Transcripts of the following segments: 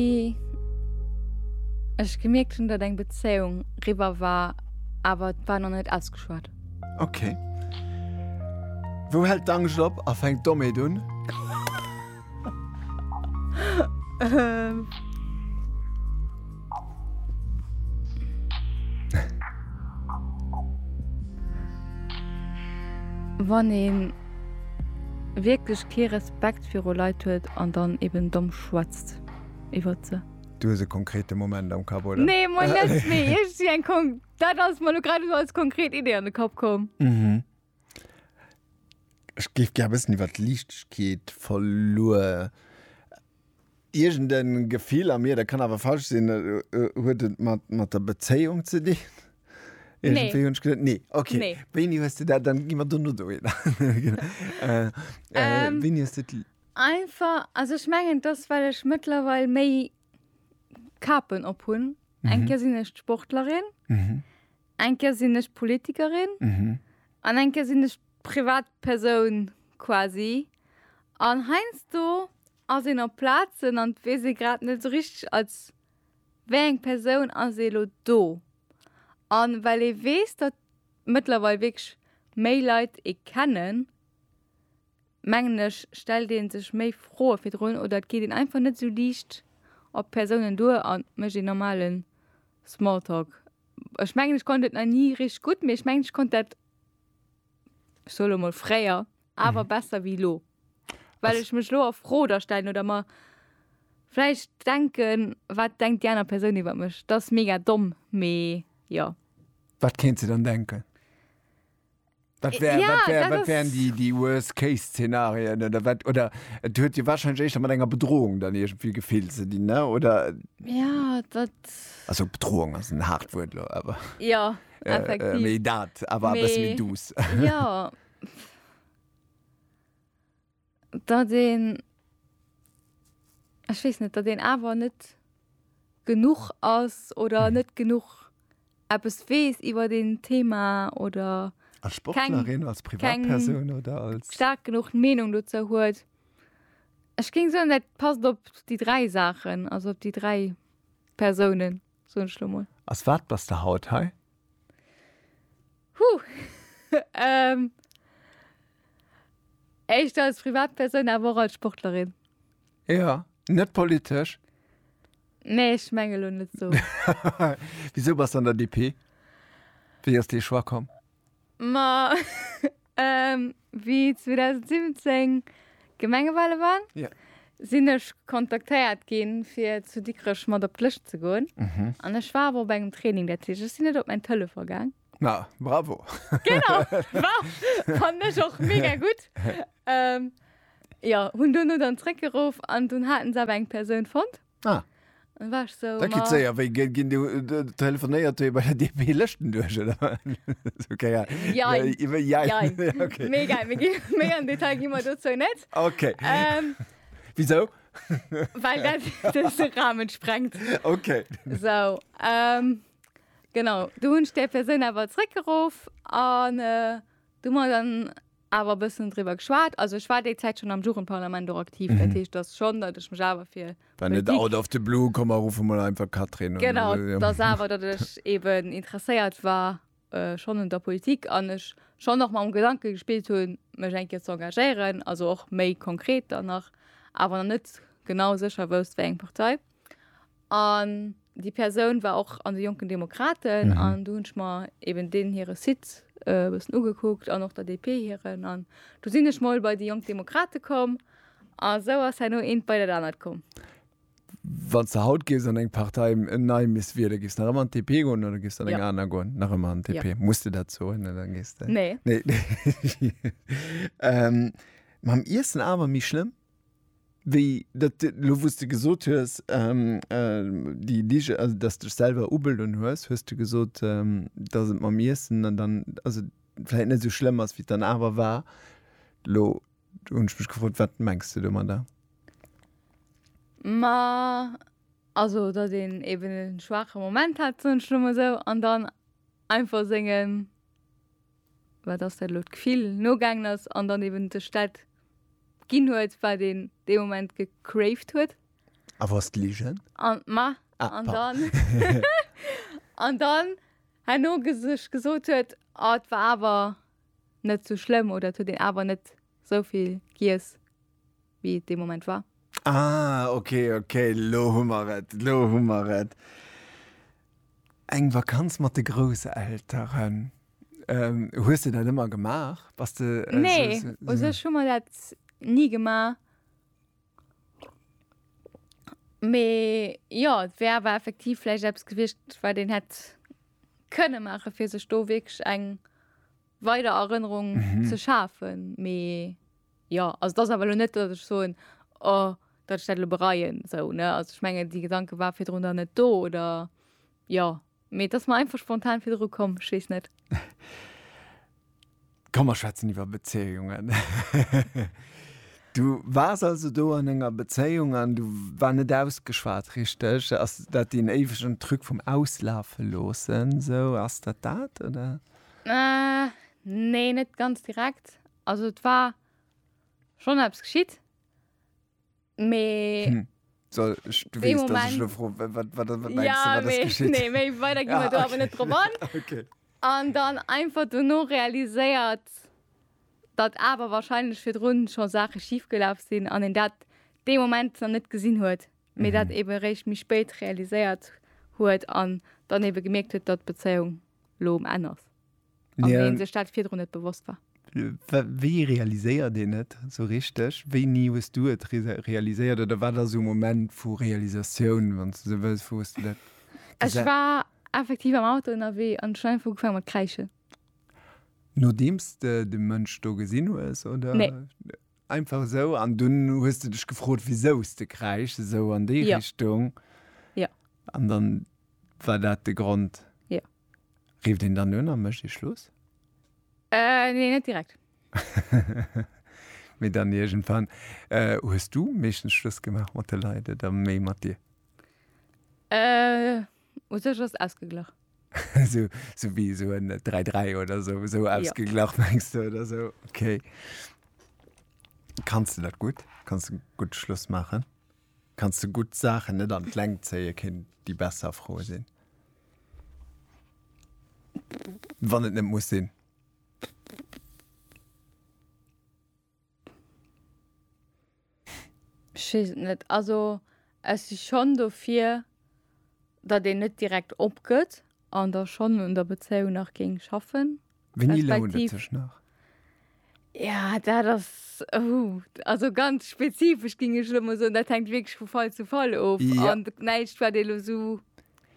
wéi ech gemierkt hunn, datt eng Bezéiung riwwer war, awer et war nach net ausgeschwat. Ok. Wou hält d'Angscht op a fänkt d'Dommeet un? Wann ee wierklech kee Respekt viru Leit huet an dann eben domm schwätzt. Podcast iwwert se. Du hues e konkrete Moment am Kapp, oder? Nee, moi net, mee ech si eng Kon dat ass mer lo grad esou als konkret Idee an de Kapp komm. Mhm. Ech géif gär bëssen iwwer d'Liichtegkeet verluer. Iergend e Gefill a mir, dat kann awer falsch sinn, huet et mat mat der Bezéiung ze dinn? Nee. Iergendwéi hunn ech geduet, nee, okay. Nee. Wéini hues de dat dann, gi mer dono dohinner. Wéini hues de d'Liicht. Einfach, also ech mengen dass well ech mëttlerweil méi Kapen op hunn. Mhm. Eng Kéier sinn ech d'Sportlerin, mhm. eng Kéier sinn ech Politikerin mhm. an mhm. eng Kéier sinn ech Privatpersoun quasi. An heinz du ass en op Plazen an wee se grad net so richtig als wé eng Persoun as elo do. An well e wees dat mëttlerweil wég méi Leiit e kennen, mengen ech, stellt ee sech méi Froe virdrun oder et geet een einfach net esou liicht op d'Persounen duer a mécht een normale Smalltalk. Ech mengen, ech konnt et nach ni richteg gutt, mee ech mengen, ech konnt dat, ech soe lo mol fréier, awer besser wéi elo. Well ech mech elo a Fro da stellen oder mer vläicht denken, Wat denkt déi aner Persoun iwwer mech? Dat ass mega domm, mee jo. Wat kéint se dann denken? Wat wär, ja, wat wär, wat wären die, die Worst-Case-Szenarien oder wat, oder et huet dir wahrscheinlich echt mat enger Bedrohung dann irgendwie gefehlt ze dinn, ne? oder? Ja, dat. Also Bedrohung ass en hart Wuert lo, aber. Ja, äh, effektiv. Äh, méi dat, aber mais, e bëssen méi douce. Ja. datt een, ech weess net, datt een awer net genuch ass oder net genuch eppes weess iwwert een Thema oder Als Sportlerin, als Privatperson oder als. Keng staark genuch Meenung dozou huet. Ech géing soen, dat passt op déi dräi Saachen, also op déi dräi Persounen, soen ech elo mol. Als wat bass de haut hei? Huh! Ähm. Éischter als Privatpersoun, awer och als Sportlerin. Jo, net politesch? Nee, ech menge lo net esou. Wisou bass de an der DP? Wéi ass dee Choix komm? Ma, ähm, wéi 2017. Gemengewale waren, sinn ech kontaktéiert ginn, fir zu Dikrech mat op d'Lëscht ze goen. An ech war awer op engem Training, dat heescht, ech sinn net op mäin Telefon gaang. Na, bravo! Genau, fannen ech och mega gutt. Jo, hunn duerno dann zréckgeruff an dunn haten se awer eng Persoun fonnt. Ah. Dann war ech so, da geht sehr, weil gehen du äh, telefoniert du bei der DP Listen durch oder okay ja ja ja, ja. ja. okay mega mega mega im Detail gehen wir dazu nicht okay ähm, wieso weil das das den Rahmen sprengt okay so ähm, genau du hast der Person aber zurückgerufen und äh, du mal dann awer e bëssen driwwer geschwat, also ech war déi Zäit schonn am Jugendparlament och aktiv, dat heescht dass schon datt ech mech awer fir War net Politik, out of the blue komm mer ruffe mol einfach d'Catherine un genau, oder esou. dass awer datt ech eben interesséiert war schonn un der Politik an ech schonn och mam Gedanke gespillt hunn mech eng Kéier ze engagéieren, also och méi konkret dann nach, awer nach net genau sécher wousst wéi eng Partei. An déi Persoun war och an de Jonken Demokraten mhm. an du hunn ech mer eben den hire Site äh, bëssen ugekuckt an och der DP hiren an du sinn ech moll bei déi Jonk Demokrate komm a sou ass henno eent bei dat anert komm. Wann ze haut gees an eng Partei en nei miss wie, da gist nach ëmmer an TP gon oder gist an eng ja. aner gon nach ëmmer an TP ja. muss du dat zo dann gest nee. nee. ähm, mam Issen awer mi schlimm Wéi dat elo, wou s de gesot hues, déi Lige, also dass dech selwer ubeloen hues, hues de gesot, dass et mam Iessen an dann, also vläicht net esou schlëmm ass, wéi et dann awer war. Elo hunn ech mech gefrot, wat mengs de domadder? Ma also datt een eben e schwaache Moment hat, soen ech elo mol esou, an dann einfach sengen. wat ass dat elo, d'Gefill nogaangen ass an dann eben sech dat ginn huet, wat een dee Moment gecraved huet. A wou ass d'Ligen? An, ma, ah, an dann, an dann herno sech gesot huet, ah, et war awer net sou schlëmm oder et huet een awer net sou vill giess wéi et dee Moment war. Ah ok ok, lo hu mer et, lo hu mer et. Eng Vakanz mat de Grousselteren. Hues de dat ëmmer gemaach? Bass de esou. Nee, u sech hu mer dat ni gemaach. Mee jo, et wär awer effektiv vläicht eppes gewiescht, wat een hätt kënne maachen, fir sech do wierklech eng weider Erënnerung ze schafen. Mee jo, also dat ass awer elo net, datt ech soen, oh, datt ech dat elo bereien, sou, ne? Also ech mengen, dee Gedanke war virdrun dann net do, oder jo. Mee et ass mer einfach spontan virdru komm, ech weess net. Komm, mer schwätzen iwwer Bezéiungen. Du waars also do an enger Bezéiung an du war net ausgeschwat, richteg? Ass dat deen éiwegen Truc vum Auslafe loossen, sou? Ass dat dat, oder? Äh, nee, net ganz direkt. Also et war schon eppes geschitt. Mee. Hm. So, ich, du weißt, dass ich nur froh, was, was, was, was meinst ja, du, was ist geschieht? Nee, mehr weiter gehen wir ah, da aber nicht drüber an. okay. Und dann einfach nur realisiert, dass aber wahrscheinlich für drin schon Sachen schiefgelaufen sind und in dat dem Moment noch nicht gesehen hat. Mhm. Mir das eben recht mich spät realisiert hat und dann eben gemerkt hat, dass Beziehung lo um Enn ass. An yeah. deen sech dat virdrun net bewosst war. Wéi realiséiert dee net so richteg? Wéi nie hues du et realiséiert oder war der so Moment vu Realisatioun wann ze se wës wo du dat? Ech war effektiv am Auto ënnerwee an Schein vu gefang mat kräiche. Nodeems de de Mënsch do gesinn hues oder? Nee. Einfach esou an dunn hues de dech gefrot wisouse de kräischs esou an déi Richtung. Jo. An dann war dat de Grond. Jo. Rifft een dann un a mécht ee Schluss? Nee net direkt. Mee dann iergendwann. Hues du meeschtens Schluss gemaach mat de Leit oder méi mat dir? U sech ass ausgeglach. So, so wéi esou en 3, 3 oder esou, esou ausgeglach mengs de oder esou? Okay. Kanns de dat gutt? Kanns de gutt Schluss maachen? Kanns de gutt Saachen net an d'Längt zéien, kéint déi besser Fro sinn? Wann et net muss sinn. Ech weess et net. Also ech si schonn dofir, datt een net direkt opgëtt an da schonn un der Bezéiung nach géing schaffen. Wéini lount et respektiv. sech nach? Ja, dat ass, oh, also ganz spezifesch géing ech elo mol soen. Dat hänkt wierklech vu Fall zu Fall of Ja. an näischt, wat ee elo esou.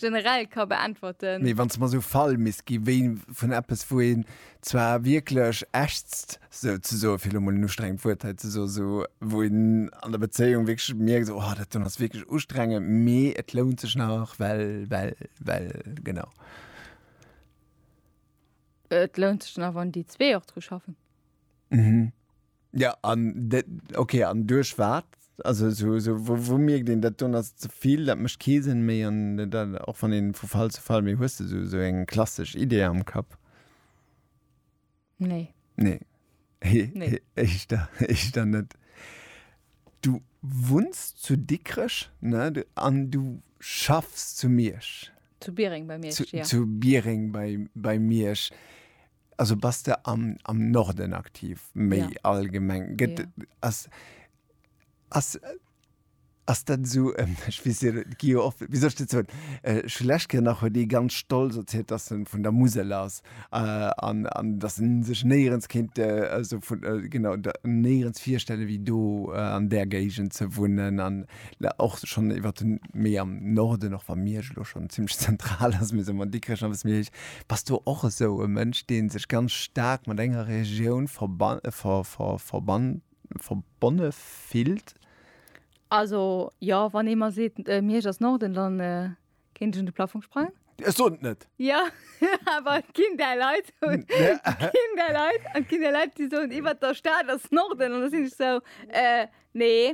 generell ka beäntwerten. Mee wann s de mer esou Fall misst gi wéi vun eppes, wou een zwar wierklech ächzt, souzesoen, fir elo mol en ustrengend Wuert hei ze soen, esou wou een an der Bezéiung wierklech mierkt, esou oh dat do ass wierklech ustrengend, mee et lount sech nach, well, well, well, genau. Et lount sech nach, wann déi zwee och dru schaffen. Mhm. Ja an dat, okay, an duerch wat? Also esou, esou wou, wou mierkt een, dat don ass ze vill, dat mécht kee Sënn méi an dat, och wann een vu Fall zu Fall, mee hues de esou, esou eng klassesch Idee am Kapp? Nee. Nee. Nee. Ech da, ech da net. Du wunns zu Dikrech, ne? Du, an du schaffs zu Miersch? Zu Biereng bei Miersch, ja. Zu Biereng bei, bei Miersch. Also bass de am, am Norden aktiv, méi ja. allgemeng. Gëtt ja. ass, ass, ass dat so ähm, ich weiß, gi oft wie soll ich dat so äh, schlecht nach huet déi ganz stolz erzählt dass en vun der Musel ass äh, an, an dass en sech néierens kind äh, also vun äh, genau néierens virstelle wie do äh, an der Géigend ze wunnen an La, och schon iwwer den méi am Norden, och wa Miersch elo schon ziemlech zentral ass, mee soe mer Dikrech ass e bësse méi héich. Bass du och esou e Mënsch, dee sech ganz staark mat enger Regioun verban, ver, ver, verban, verbonne fillt? Also, jo, wann ee mer seet, Miersch ass Norden, dann kéint ech un de Plafong sprangen. Ech soen et net! Jo, awer et ginn där Leit, et ginn där Leit, et ginn där Leit, déi soen, iwwer der Stad ass Norden, an da sinn ech esou, Äh, nee.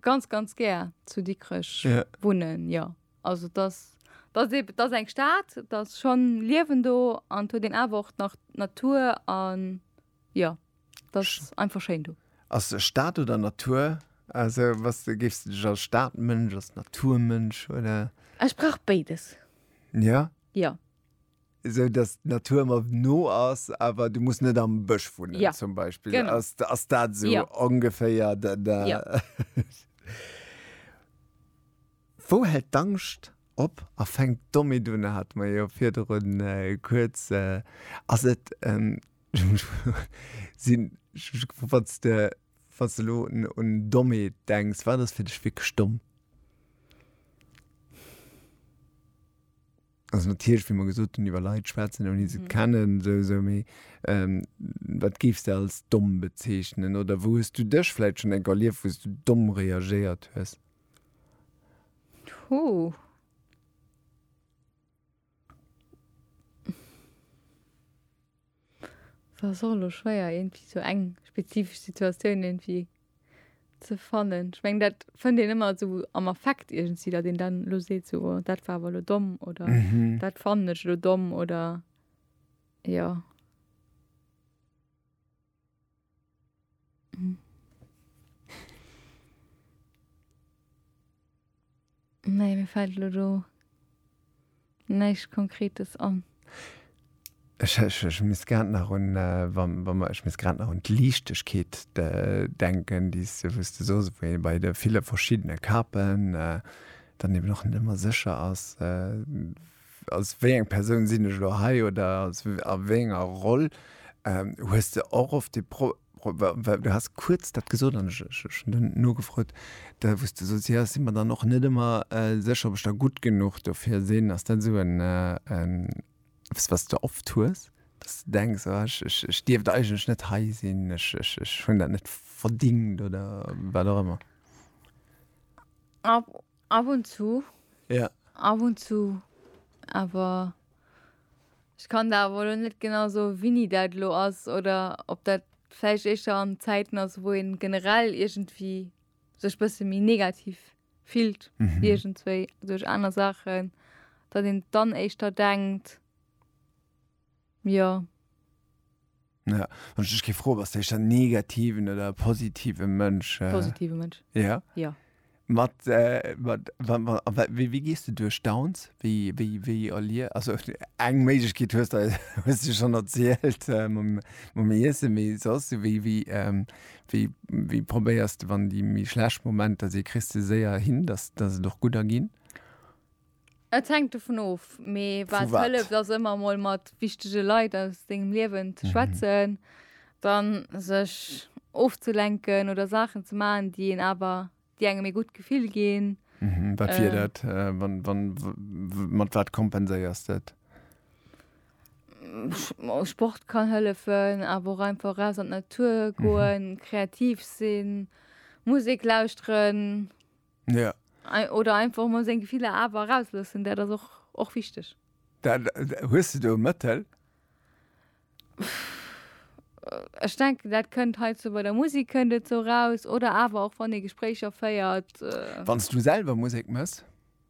ganz ganz gär zu Dikrech yeah. wunnen ja also das das eben das eng Staat das schon liewen do an hue den awer nach Natur an ja das Sch einfach schein du as Staat oder Natur also was du gifst dich als Staatmënsch als Naturmënsch oder Ech brauch beides ja ja esou dass d'Natur mer no ass, awer du muss net am Bësch wunnen ja. zum Beispill. Genau. Ass, ass dat so ja. ongeféier da, da. Ja. Wou hält d'Angscht op a fänkt domme dun hat mer jo virdrun äh, kuerz äh, ass et ähm, sinn wanns de wanns de lo un domme denks, war das fir dech wéi stomm? Also natierlech, wéi mer gesot hunn, iwwer Leit schwätzen, ouni se kennen, sou, sou, mee wat géifs de als domm bezeechnen? Oder wou hues du dech vläicht schonn enk erlieft, wou s du domm reagéiert hues? Huh. Ass och elo schwéier irgendwie sou eng spezifesch Situatioun irgendwie ze fannen. Ech meng dat fënnt een ëmmer sou am Affekt iergendwéi, datt een dann elo seet sou oh dat war awer elo domm oder dat fannen ech elo domm oder jo. Nee, mir fällt lo do näischt Konkretes an. Ech, ech, ech misst grad nach un, äh, wa, wa mer, ech misst grad nach un d'Liichtegkeet de, denken, déi s de, wou s de soos, wou ee bei de ville verschiddene Kapen äh, dann eben och net ëmmer sécher ass, äh, als wéi eng Persoun sinn ech elo hei oder als a wéi enger Roll ähm, hues de och oft de Pro well du hast kuerz dat gesot an ech ech hunn dunn nogefrot, da wou s de soss, jo ech si mer dann och net ëmmer äh sécher, ob ech da gutt genuch dofir sinn. Ass dat esou en äh en eppes, wat s de oft hues, dass s de denks, oh ech ech ech dierft eigentlech net hei sinn, ech ech ech hunn dat net verdingt oder wat och ëmmer? Ab und zu. Ja. Ab und zu. Awer ech kann der awer elo net genau soen, wéini dat elo ass oder ob dat vläicht éischter an Zäiten ass, wou ee generell iergendwéi sech bësse méi negativ fillt, iergendswéi duerch aner Saachen, datt een dann éischter denkt. Jo. Ja, wann ech dech géif froen, bass du éischter en negativen oder e positive Mënsch? Positive Mënsch. Ja? Ja. Mat, äh, mat, wa- wa- wa- wéi, wéi gees du duerch Downs? Wéi, wéi, wéi erlie also eng Méiglechkeet hues de, hues de schonn erzielt, äh, mam, mam Iessen, mee soss, wéi, wéi, ähm, wéi, wéi probéiers de, wann déi méi schlecht Momenter si, kriss de se séier hin, dass, dass et och gudder ginn? Et hänkt dovun of, mee Vu wat wat? hëlleft ass ëmmer emol mat wichtege Leit aus dengem Liewen ze schwätzen, dann sech ofzelenken oder Saachen ze maachen, déi een awer, déi engem ee gutt Gefill ginn. Mhm, wat wier dat? Wann, wann, w, mat wat kompenséiers de et? Sport kann hëllefen, awer och einfach raus an d'Natur goen, kreativ sinn, Musek lauschteren. Ja. Oder einfach mol seng Gefiller awer erausloossen, dat ass och, och wichteg. Dat, hues de do e Mëttel? Ech denken, dat kënnt hei zou bei der Musek kënnt et zou raus oder awer och wann ee Gespréicher féiert. Wann s du selwer Musek mëss?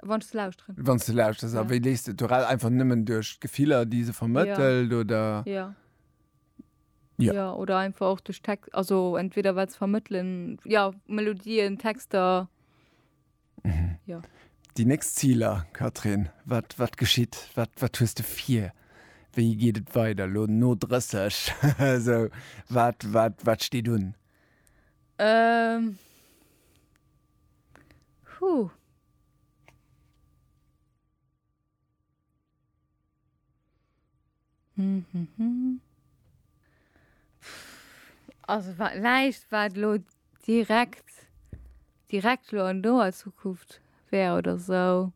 Wann ech se lauschteren. Wann s de lauschters, a wéi léist de et do raus? Einfach nëmmen duerch d'Gefiller, déi se vermëttelt oder? Jo. Ja. Ja, oder einfach och duerch Text, also entweder wat ze vermëttelen, ja, Melodien, Texter. Déi nächst Ziler, Catherine, wat, wat geschitt? Wat, wat hues de vir? Wéi geet et weider lo no 30? so, wat, wat, wat steet un? Ähm. Huh. Also wat näischt wat lo direkt direkt lo an doer Zukunft wär oder sou.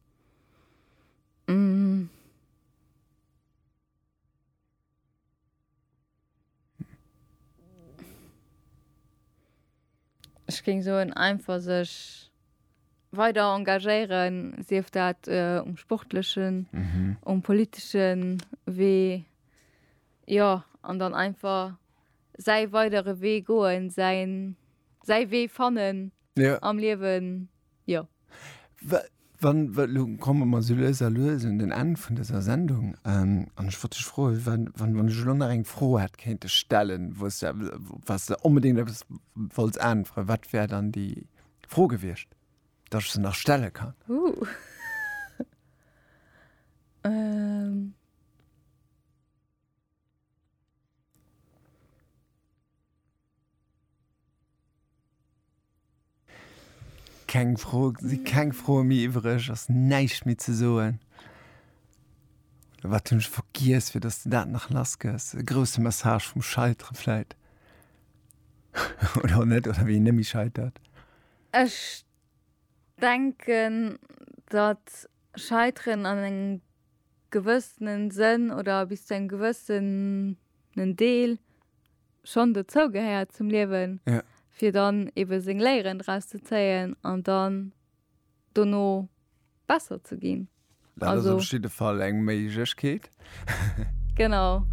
Ech géing soen einfach sech weider engagéieren, sief dat äh, um sportlechen, mhm. um politeschen Wee ja an dann einfach sei weidere Wee goen, sein sei Wee fannen, ja. am Liewen jo. Wann lo komme mer so lues a lues un den Enn vun dëser Sendung ähm, an ech wollt dech froe wann wann ech lo nach eng Fro hätt kéinte stellen, wou's de was de onbedéngt eppes wollts äntweren, wat wär dann déi Fro gewiescht, datt ech se nach stelle kann? Uh. ähm. Keng Fro, si keng Froe méi iwwereg, ass näischt méi ze soen. Oder wat hunn ech vergiess, fir datt s de dat nach lass gëss? E grousse Message vum Scheitere vläit? Oder och net, oder wéi een net méi scheitert. Ech denken, datt Scheiteren an engem gewëssenen Sënn oder bis zu engem gewëssen. en Deel schon dozou gehéiert zum Liewen, ja. fir dann eben seng Léieren draus ze zéien an dann dono besser ze ginn. Dat also, ass op jidde Fall eng Méiglechkeet. genau.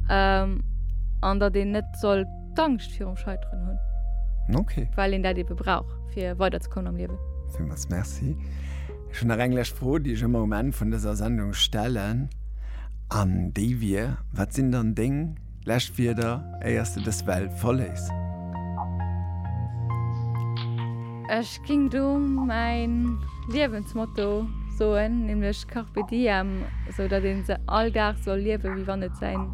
Ähm, an datt een net soll d'Angscht virum Scheiteren hunn. Okay. Well een dat ebe brauch, fir weiderzekommen am Liewen. Villmools Merci. Ech hunn nach eng lescht Fro, déi ech ëmmer um Enn vun dëser Sendung stellen, an déi wier, Wat sinn dann deng lescht Wierder, éier s de dës Welt verléiss? Ech géing do mäin Liewensmotto soen, nämlech Carpe diem, esou datt ee se all Dag soll liewen, wéi wann et säin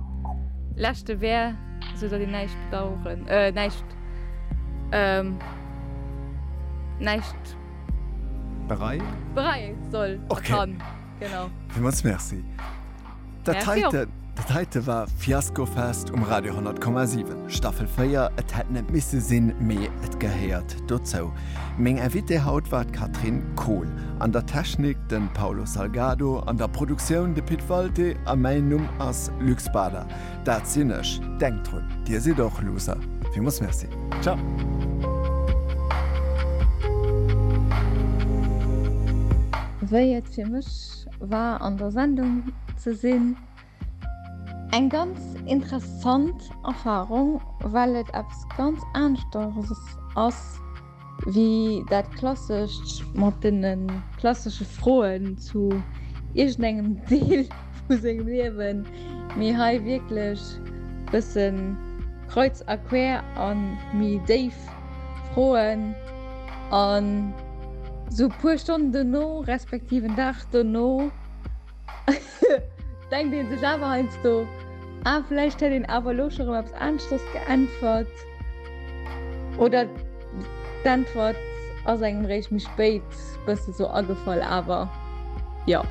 leschte wär, esou datt een näischt bedaueren, näischt, näischt. Berei? Berei, soll, okay. kann. Genau. Villmools Merci. Dat heite, dat heite war Fiasko Fest um Radio 10,7. Staffel 4, et hätt net misse sinn, mee et gehéiert dozou. Meng Invitée haut war d'Catherine Kohl. An der Technik den Paulo Salgado, an der Produktioun de Pit Walté a mäin Numm ass Luc Spader. Dat sinn ech. Denkt drun, Dir sidd och Loser. Villmools Merci. Ciao. Wéi et fir mech war an der Sendung ze sinn, eng ganz interessant Erfarung, well et eppes ganz aneschters ass, Wéi dat klassescht mat deene klassesche Froen zu iergendengem Deel vu sengem Liewen, mee hei wierklech bësse kreuz a quer a méi déif Froen. An esou e puer Stonnen dono, respektiv en Dag dono, denkt ee sech awer heiansdo, ah vläicht hätt een awer elo scho rëm eppes aneschtes geäntwert. Oder d'Äntwert ass engem réischt méi spéit bësse sou agefall, awer jo.